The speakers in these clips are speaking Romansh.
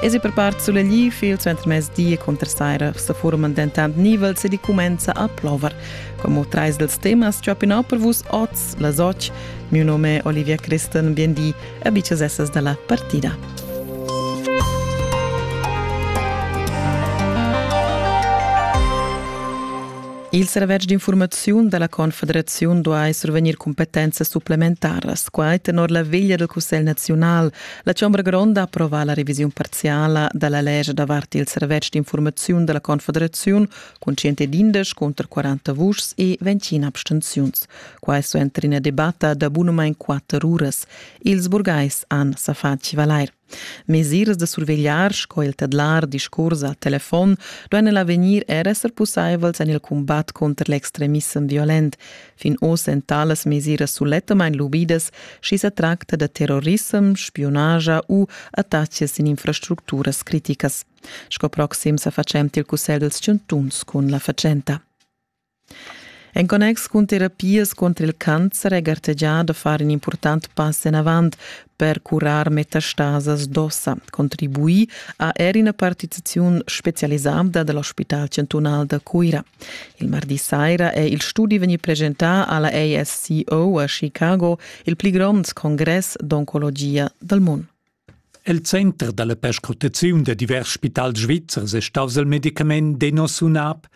Esi per part sulegli il suentermezdi conter saira sa forman dentant nivels ed i cumenza a plover. Como trais dels temas chopinau per vus oz las och, mio nome Olivia Christen, biendi, a bichas essas da la partida. Il servetsch d'informaziun da la Confederaziun duai survegnir competenza supplementaras, quai tenor la veglia del Cussegl naziunal, La Chombra gronda ha approvà la revisiun parziala da la lescha davart il servetsch d'informaziun da la Confederaziun cun 111 cunter 40 vuschs e 20 abstenziuns. Quai sto entrar ina debatta da bunamain quatter uras. Ils burgais han sa fatg valair. Mesiras da survegliar sco il tedlar discurs al telefon duain en l'avegnir er esser pussaivels en il cumbat cunter l'extremissem violent. Fin oz èn talas mesiras sulettamain lubidas, sch'i sa tracta da terrorissem, spiunage u attacks sin infrastructuras criticas. Sco proxim sa facent il cussegl dals chantuns cun la fatschenta. En connex cun terapias contro il cancer è gartegià da far in important pass enavant per curar metastasas d'ossa, contribui a er ina partiziun specialisada dal Ospital chantunal da Cuira. Il mardi saira è il studi vegni presentà alla ASCO a Chicago, il pli grond congress d'oncologia dal mondo. El center dalla perscrutaziun da divers spitals svizzers è staus il medicament Denosumab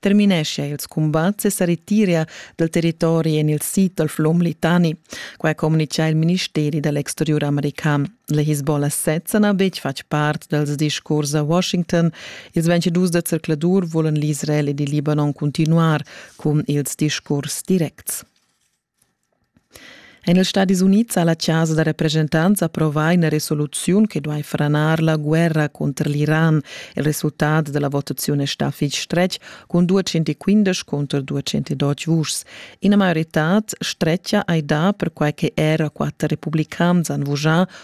termineschia ils cumbats e sa retiria dal territori en il sid dal flum Litani. Qua communica il ministeri dall'exteriur american. La Hezbollah sezza n'ha betg fatg part dals discurs a Washington. Ils 22 da zercladur volan l'Israel ed il Libanon continuar cun ils discurs directs. En ils Stadis Unids ha la chasa da represchentants approvà ina resoluziun che duai franar la guerra cunter l'Iran. Il resultat da la votaziun è stà fitg stretg cun 215 cunter 220 vuschs. Ina maioritad stretga hai dà perquai che era quatter republicans han vuschà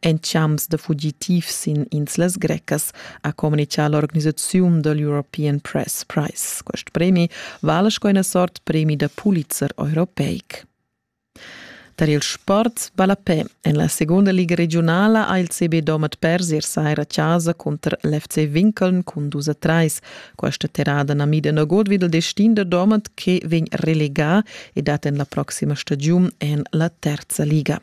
En champs da fugitivs sin inslas grecas ha communicà l'organisaziun da l'European Press Prize. Quest premi vala sco ina sort premi da Pulitzer europeic. Tar il sport ballapè en la segunda liga regiunala ha il CB Domat pers ier saira a casa cunter l'FC Winkeln cun dus a trais. Questa terrada na mida nagut vid il destin da Domat che vegn relegà e dat en la proxima stagiun en la terza liga.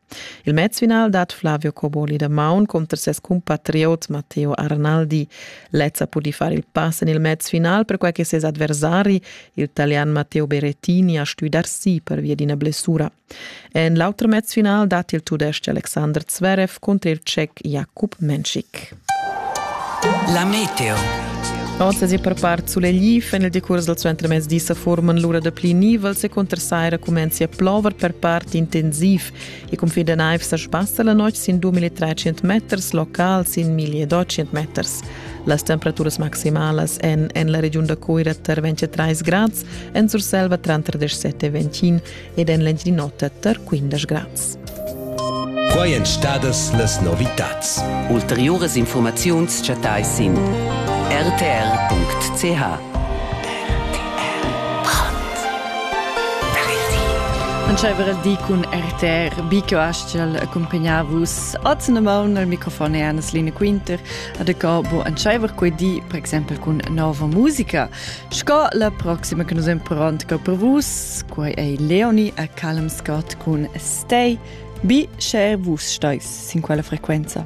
Il mezfinal dat Flavio Coboli da maun cunter ses cumpatriot Matteo Arnaldi. Lezza pudi far il pass en il mezfinal perquai che ses adversari, il talian Matteo Berettini, ha stuì dar si pervia d'ina blessura. En l'auter mezfinal dat il tudestg Alexander Zverev cunter il tschec Jakub Menschik. La meteo. Otas e per part sulegli fan il decurs dal suentermezdi sa forman l'ura da pli nivels e conter saira cumenzi a plover per part intensiv e cun fin da naiv sa sbassa la notg sin 2300 meters local sin 1200 meters. Las temperaturas maximalas en en la regiun da Coira tar 23 grads, en Surselva tranter 17 e 21 ed en l'Engiadin'Ota tar quindesch grads. Quai èn stadas las novitads. Ulteriuras infurmaziuns chattai sin rtr.ch. Entscheiver il di cun RTR Bico Astgel accompagna vus oz na maun al microfon è Annes Line Quinter ad acabo entscheiver quei di per exempel cun nova musica Sco la proxima che nus imperant per vus, quai è Leoni a Callum Scott cun Stay, bi cher vus stais sin quella frequenza.